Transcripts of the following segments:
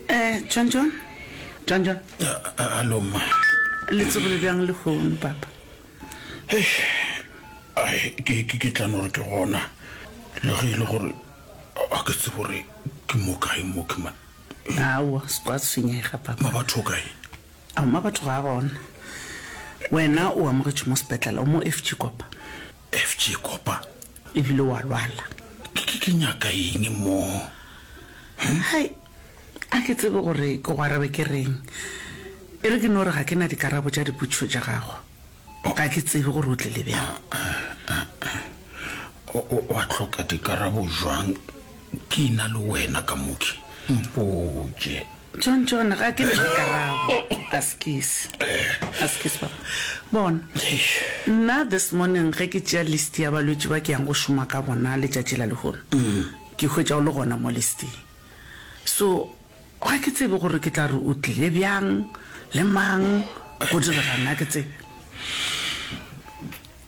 Eh, John John? John John? Hallo, mma. Le tsogile bjang le kgono, papa? Ai, ke ke ke tla no re ke gona. Le ge e le gore a ke tsebo re ke mo kae mo ke man. Aowa, se kwa tshwenyega, papa. Ma batho kae? Ao ma batho ga a gona. Wena o amogetšwe mo sepetlela, o mo FG Kopa. FG, Kopa e bile wa lwala. Ke, ke nyaka eng mo? Hm? Hai, a ke tsebe gore ke go arabe ke reng. E re ke no re ga ke na dikarabo tša dipotšišo tša gago. Ga ke tsebe gore o tlile bjang. O, o, o a tlhoka dikarabo jwang? Ke ina le wena ka mooki. Mpotše. John, John, ga ke ntle karabo. Askis. Askis, Papa. Bona. Nna this morning ge ke tšea list ya balwetši ba ke yang go šoma ka bona letšatši la lehono, ke hwetša o le gona mo listing. So, ga ke tsebe gore ke tla re o tlile bjang, le mang, go direga'ng, ga ke tsebe.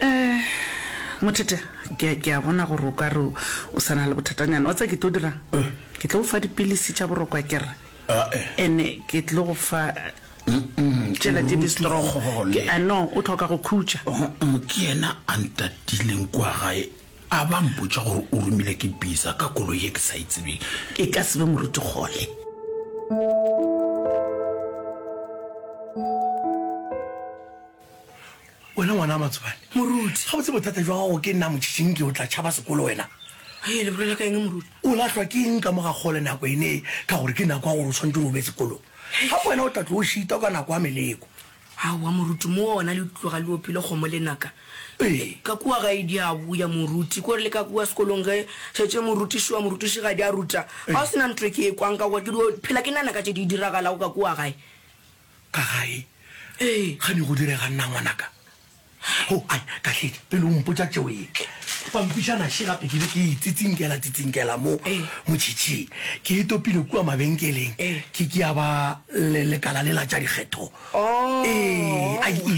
Eh, Mothete, ke a- ke a bona gore o ka re o sa na le bothatanyana. Wa tsa ke tlo dirang? Ke tlo go fa dipilisi tša boroko ke re. Ae. Ene ke tlo go fa tšela tše di strong. Kgole. Ke a no, o tlhoka go khutša. Mm, ke yena a ntatileng kwa gae a ba mpotša gore o romile ke bisa ka kolo ye ke sa e tsebeng e ka sebe moruti kgole Wena ngwana wa Matsobane. Moruti. Gabotse bothata jwa gago ke nna Motšhinki o tla tšhaba sekolo wena. Hei, le bolela ka eng moruti? O lahlwa ke eng ka mo ga kgole nako e ne ka gore ke nako ya gore o tshwanetse gore o be sekolong. Gape wena o tla tlo o šita ka nako ya meleko. Aowa moruti, mo ona le tloga le opile kgomo lenaka. Ee. Ka kua gae di a boya moruti, ke gore le ka kua sekolong ge šetše morutiši wa morutišigadi a ruta, ga o se na ntho e ke e kwang ka gore ke dio phela ke nana ka tše di diragalago ka kua gae. ka gae ee gane go direga nna ngwanaka o oh, ai ka tlhetse pele o mpotsa tšeo e pampišana še gape ke be ke tsitsinkela tsitsinkela mo motšhitšhing ke e topile kua mabenkeleng ke ke ya ba lekala le la tša dikgetho oh. ee